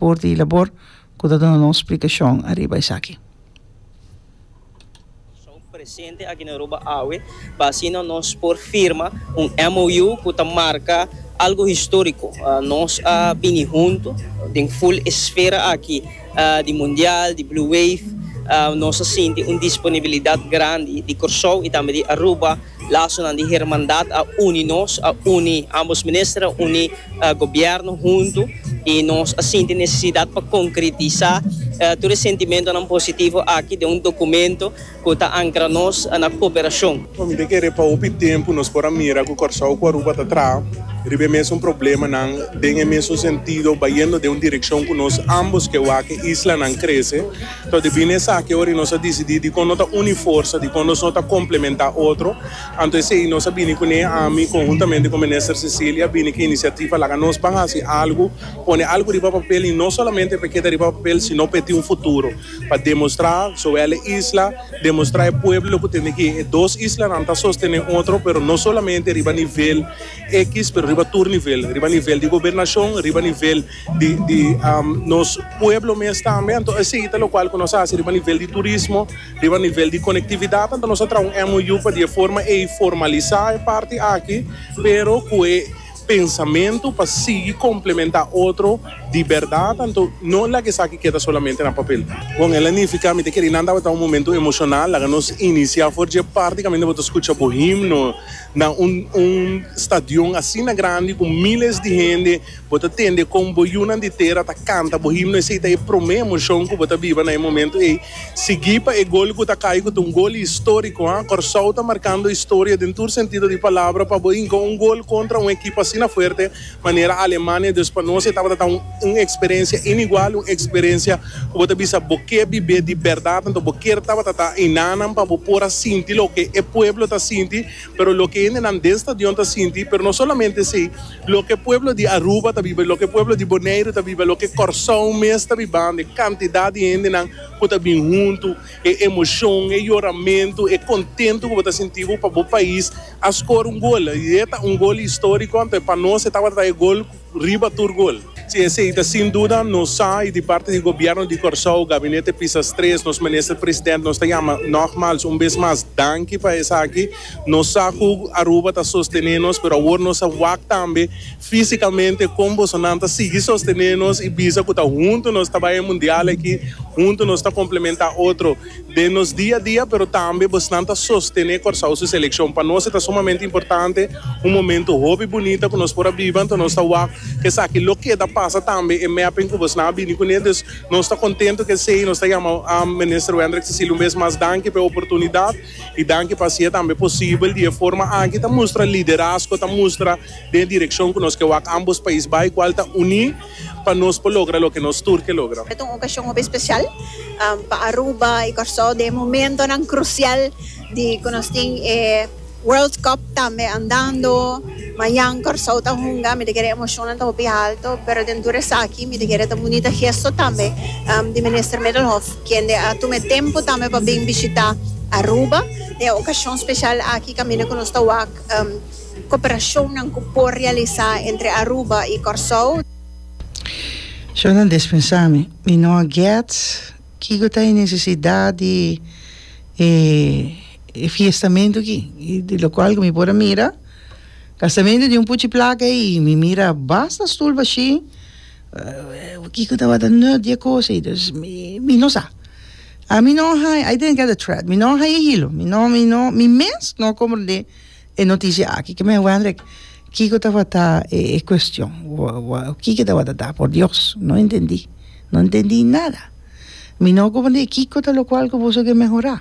Por di Labor cu ta duna nos splicacion ariba esaki. Presente aki na Aruba awe pa asina nos por firma un MOU cu ta marca algo historico. Nos a bini hunto den full esfera aki di mundial, di Blue Wave. Nos a sinti un disponibilidad grandi di Corsou y tambe di Aruba. Lasonan di hermandad a uni nos, a uni ambos minister, a uni gobierno huntu y nos a sinti necesidad pa concretisa tur e sentimentonan positivo aki den un documento cu ta ancra nos na cooperacion. Mi ta kere pa hopi tempo nos por a mira cu Corsou cu Aruba ta traha riba e mesun problemanan den e mesun sentido, bayendo den un direccion cu nos ambos ke wak e islanan crece. Ta debí na esaki ora y nos a disidí dikon no ta uni forsa, dikon nos no ta komplementá otro. Anto esei nos a bini ku Nea Ami konhuntamente ku Minister Cecilia bini ku inisiativa Laga nos ban hasi algu, pone algu riba papel y no solamente pa e keda riba papel sino pa e tin un futuro, pa demostrá zowel e isla, demostrá e pueblo ku tende ke e dos islanan ta sostené otro pero no solamente riba nivel X pero riba tur nivel, riba nivel di gobernashon, riba nivel. di nos pueblo mes tambe anto esey ta lokual ku nos a hasi riba nivel di turismo riba nivel di konektividat anto nos a traha un MOU pa di e forma ey formalisá e parti aki pero ku e pensamentu pa sigui komplementá otro di bèrdat anto no laga esaki keda solamente na papel. Bon el a nifiká mi ta kere nan tabata un momentu emoshonal laga nos inisiá for dje partikamente bo ta skucha bo himno na un un stadion asina grandi ku miles di hende. Bo ta tende kon bo yunan di tera ta kanta bo himno, esei ta e promé emoshon ku bo ta biba na e momentu ei. Sigui pa e gol ku ta kai ku ta un gol históriko, ha. Kòrsou ta markando historia den tur sentido di palabra pa bo hinka un gol kontra un ekip asina fuerte manera Alemania. Dus pa nos e tabata ta un eksperensia inigual, un eksperensia ku bo ta bisa bo ke bib'é di bèrdat. Anto bo ker tabata ta hinannan pa bo por a sinti loke e pueblo ta sinti. pero loke hendenan den stadion ta sinti, pero no solamente esei, loke pueblo di Aruba ta biba, loke pueblo di Boneiru ta biba, loke Kòrsou mes ta bibando, e kantidat di hendenan ku ta bin huntu, e emoshon, e yoramentu, e kontentu ku bo ta sinti bo pa bo pais a skora un gol, i e ta un gol históriko, anto pa nos e tabata ta e gol. Riba tur gul. Si esei ta sin duda, nos sa y di parti di Gobierno di Corsou, Gabinete Pisas Tres, nos Minister President, nos ta yama nogmals un bes mas danki pa esaki. Nos sa cu Aruba ta sostene nos, pero awor nos a wak tambe fisicamente con bosonan ta sigui sostene nos y bisa cu ta huntu nos ta bay e Mundial aki, huntu nos ta complementa otro. den nos dia a dia, pero tambe bosnan ta sostené Kòrsou su selekshon. Pa nos e ta sumamente importante, un momentu hopi bunita ku nos por a biba, anto nos ta wak ku esaki lo keda pasa tambe e mèping ku bosnan a bini kuné. Dus nos ta kontentu ku esei nos ta yama Minister Wendrick Cecilio un bes mas danki pa e oportunidat i danki pa hasia tambe posibel di e forma aki ta mustra liderazgo, ta mustra den e direkshon ku nos ke wak ambos pais bai, kual ta uní. Pa nos por logra loke nos tur ke logra. Esta un okashon hopi spesial pa Aruba i Kòrsou den e momentonan krusial di ku nos tin e World Cup tambe andando. Mañan Kòrsou ta hunga, mi ta kere emoshonnan ta hopi haltu, pero den tur esaki mi ta kere ta bunita gesto tambe di Minister Middelhoff kende a tuma e tempu tambe pa bin bishita Aruba den e okashon spesial aki kaminda ku nos ta wak. Cooperacionnan cu por realisa entre Aruba y Corsou. Sho nan despensa mi. Mi no a get kico ta e necesidad di e e fiestamento aki. Y di locual cu mi por a mira castamento di un puchi placa ey y mi mira basta stoel bashi kico tabata nut di e cosa ey. Dus mi no sa. Ami no a haña, I didn't get the thread, mi no a haña hilo, mi no, mi no, mi mes no a comprende. E noticia aki ke men Wendrick kiko tabata e e cuestion kiko tabata ta por Dios no entendi no entendi nada mi no comprende kiko ta locual ku boso ke mehora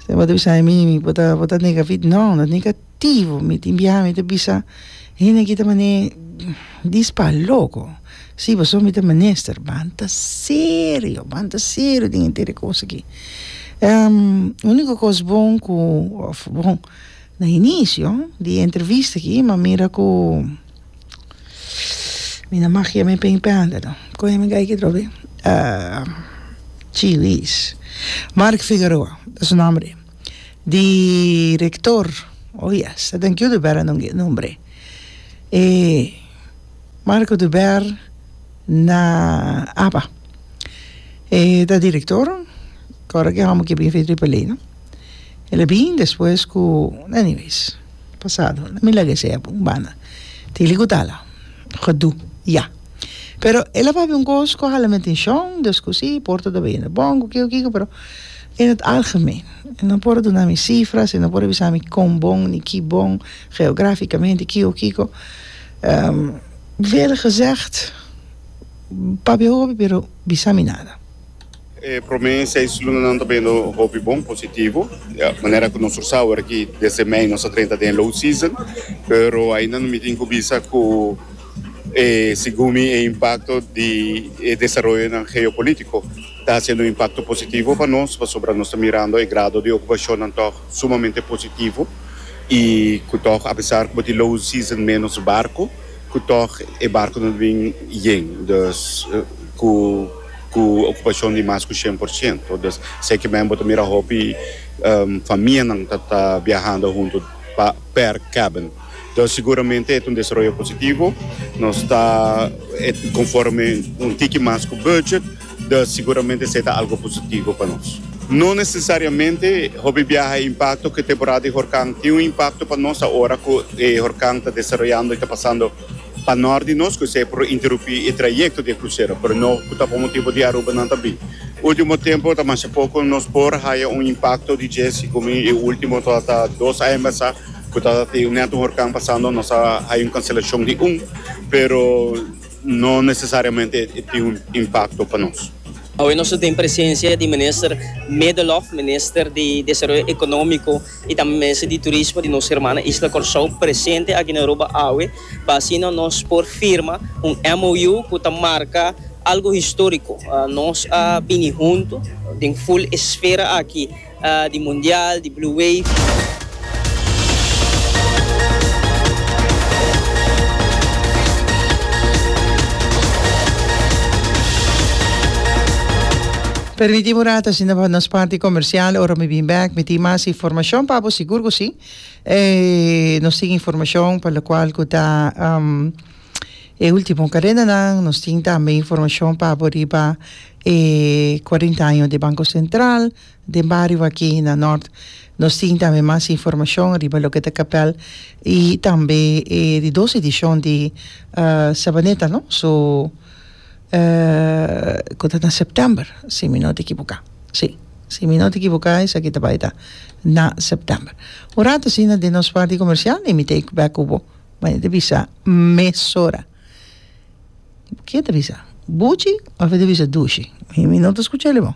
bo ta bisa mi bo ta negativo no no Tivo mi tin biaha mi ta bisa hende aki ta mane dis pa loko si pasobra mi ta menister banta serio banta serio den e tere kos aki uniko kos bon ku òf bon na inisio di e entrevista aki mi a mira ku mi na mag yame pen i penda no kon yami gay ki atrobe chi luis Mark Figaroa ta su nòmber. di rector oh yes ta den kiudu bera non gei nombre e marco de ber na aba e ta di rector ora ki homo ki a bin fei triple a no el a bin despues ku anyways pasado na mi laga esei apu banda tin li ku tala gedu ya Pero e la papia un kos ku hala mi atenshon, dus ku si, por ta tabata yende bon, ku kiko kiko, pero en het algemeen. E no por a duna mi sifras, e no por a bisa mi kon bon, ni ki bon, geografikamente, kiko kiko. Vele gezegd, papia hopi, pero bisa mi nada. E promé seis lunanan ta bendo hopi bon, positivo. Manera ku nos tur sa awor aki, desde mei nos a drenta den low season, pero ainda no mitin ku bisa ku e sigumi e impakto di e desaroyonan geopolítiko ta hasiendo un impakto positivo pa nos, pasobra nos ta mirando e grado di okupashonnan tòg sumamente positivo i ku tòg apesar ku bo tin low season ménos barko, Cu toch e barconan ta bin yen, dus cu cu ocupacion di mas cu cien por ciento. Dus seki men bo ta mira hopi famianan ta ta biahando hunto pa per cabin. Dus seguramente e ta un desaroyo positivo. Nos ta conforme un tiki mas cu budget. Da siguramente esei ta algo positivo pa nos. No nesesariamente hopi biaha e impakto ku e temporada di horkan tin un impakto pa nos awor ku e horkan ta desaroyando i ta pasando pa nòrt di nos ku esei por interupí e trayekto di e krusero, pero no ku ta pa motibu di arubanan ta bin. Ultimo tempu ta masha poko nos por haya un impakto di dje sigumin e ultimo ta ta dos aña basa ku ta tin nèt un horkan pasando nos a haya un kanselashon di un pero. No necesariamente e tin un impacto pa nos. Awe nos ta tin presencia di Minister Medelov, Minister di Desaroyo Economico y tambe Minister di Turismo di nos hermana Isla Corsou presente aki na Aruba awe pa asina nos por firma un MOU cu ta marca algo historico. Nos a bini hunto den full esfera aki. di mundial, di blue wave. Permiti bo rato asina pa nos parti comercial ora mi bin back mi tin mas informacion pa bo sigur cu si nos tin informacion pa locual cu ta E ultimo kadenanan nos tin tambe informashon pa abo riba e kuarenta año di Banko Sentral den bario aki na Nort. Nos tin tambe mas informashon riba loke ta kapèl i tambe e di dos edishon di Sabaneta no so ku ta na sèptèmber si mi no ta ekiboká si si mi no ta ekiboká esaki ta bai ta na sèptèmber. Un ratu asina den nos parti komersial e mi ta eku bèk ku bo. Ma e ta bisa, mesora. Ke ta bisa? Buchi of e ta bisa dushi? Mi no ta skucha el e bo.